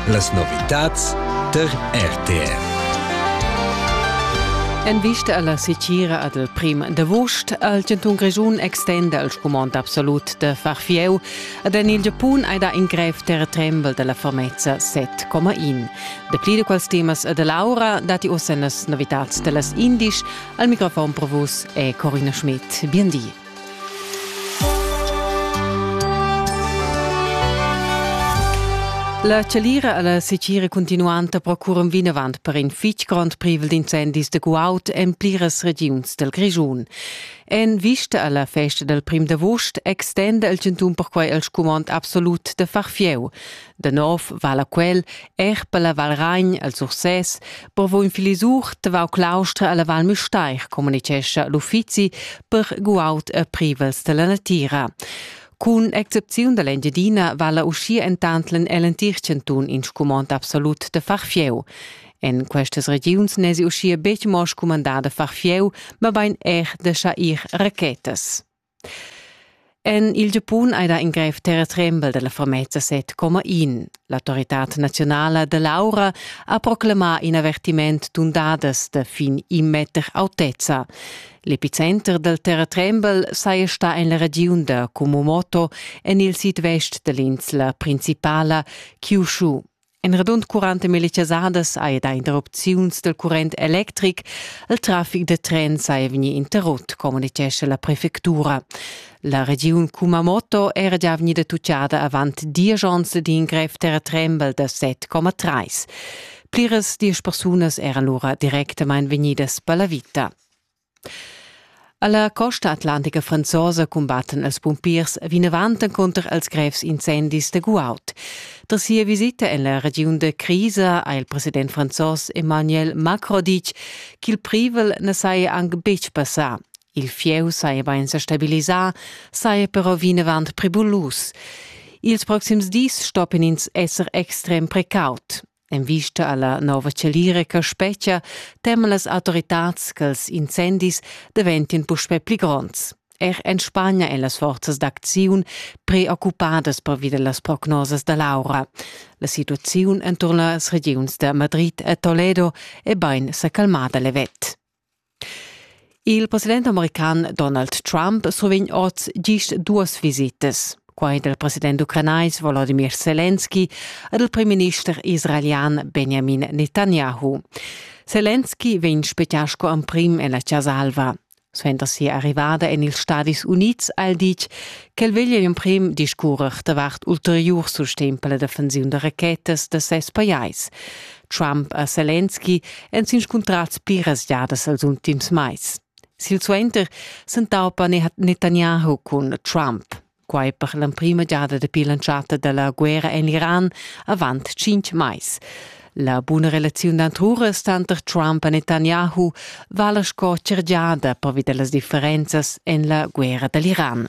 Las novitads tar RTR. En vista alla sicira ad el prim d'avost al Giantun Grischun extenda il scumond absolut da far fieu ad en il Giapun ei da in grev terretrembel dalla fermezza 7,1. De pli de quals temas e de Laura dati ossa las novitats dellas indisch al microfon provus e Corina Schmidt. Bien di. La chalira alla secira continuanta procurum vinavant per in fitg grond privel d'incendis de guaud en pliras regiuns del Grischun. En vista alla festa del prim d'agost extenda il chantun perquai il scumond absolut de far fieu. Da nov vala quel er per la Val Ragn al Sursès, per vo in filisur tavau claustra alla Val Müstair, communicescha l'uffizi per guaut e privels della natira. Cun excepziun dall'Engiadina vala uscia entantlen el entir cantun in scumond absolut de far fieu. En questas regiuns nesi uscia betg mo scumandà de far fieu, ma bein er de schair rachetas. En il Giapun ei da ingrev terretrembel dalla Formeza set coma in. L'autoritad naziunala dell'aura ha proclamà in avertiment d'undadas da fin in meter autezza. L'epicenter del terratrembel saja sta en la regiun da Kumamoto en il sidvest dell'insla principala Kyushu. En radund 40 millichasadas hai dà interrupziuns dal current electric. Il traffic da tren saja vegnì interrut, communitgescha la prefectura. La regiun Kumamoto era già vegnida tuccada avant diesch onns d'in grev terratrembel da 7,3. Pliras diesch persunas eran lura directamain vegnidas per la vita. Alla costa atlantica franzosa cumbattan els pumpiers vinavant encunter els grevs incendis de guaud. Tras sia visita en la regiun de Crisa ha il president franzos Emmanuel Macron ditg ch'il privel ne saja anc betg passà. Il fieu saja bain sa stabilisà, saja però vinavant pribulus. Ils proxims dis stoppien ins esser extrem precaut. En vista alla nova chalira che spetgia, teman las autoritads che els incendis daventien puspè pli gronds. Er en Spagna èn las forzas d'acziun preoccupadas pervi las prognosas da Laura. La situaziun enturn las regiuns da Madrid e Toledo è bain sa calmada levet. Il president american Donald Trump survegn oz gist duas visitas. Quai dal president ucranais Volodimir Selenski ed il primminister israelian Benjamin Netanyahu. Selenski vegn spettà sco emprim en la Casa Alva. Suenter sia arrivada en ils Stadis Unids ha el ditg ch'el veglia emprim discurrer davart ulteriur sustegn per la defensiun da rachetas da ses pajais. Trump e Zelensky èn s'inscuntrads pliras giadas els ultims mais. Silsuenter s'entaupa Netanyahu cun Trump. Quai per l'emprima giada dapi l'entschatta da la guerra en l'Iran avant cinc mais. La buna relaziun d'antruras tanter Trump e Netanyahu vala sco tschergiada pervi da las differenzas en la guerra da l'Iran.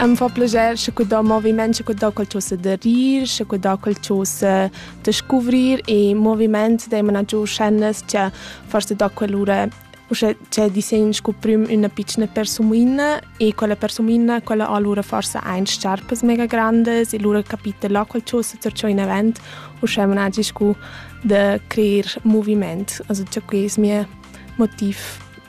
Em fa plager sche cu do moviment, sche cu do quel cho se da rir, sche cu do quel cho se da scuvrir e moviment deimana giù scènas che forse do quell'ura uschè c'è disegn scu prüm üna pitschna persumiina e quella persumiina quella ha lura forsa aint sciarpas mega grandas e lura capita là quel cho se tar in event uschè managi scu da creer moviment. Also cha que es mia motiv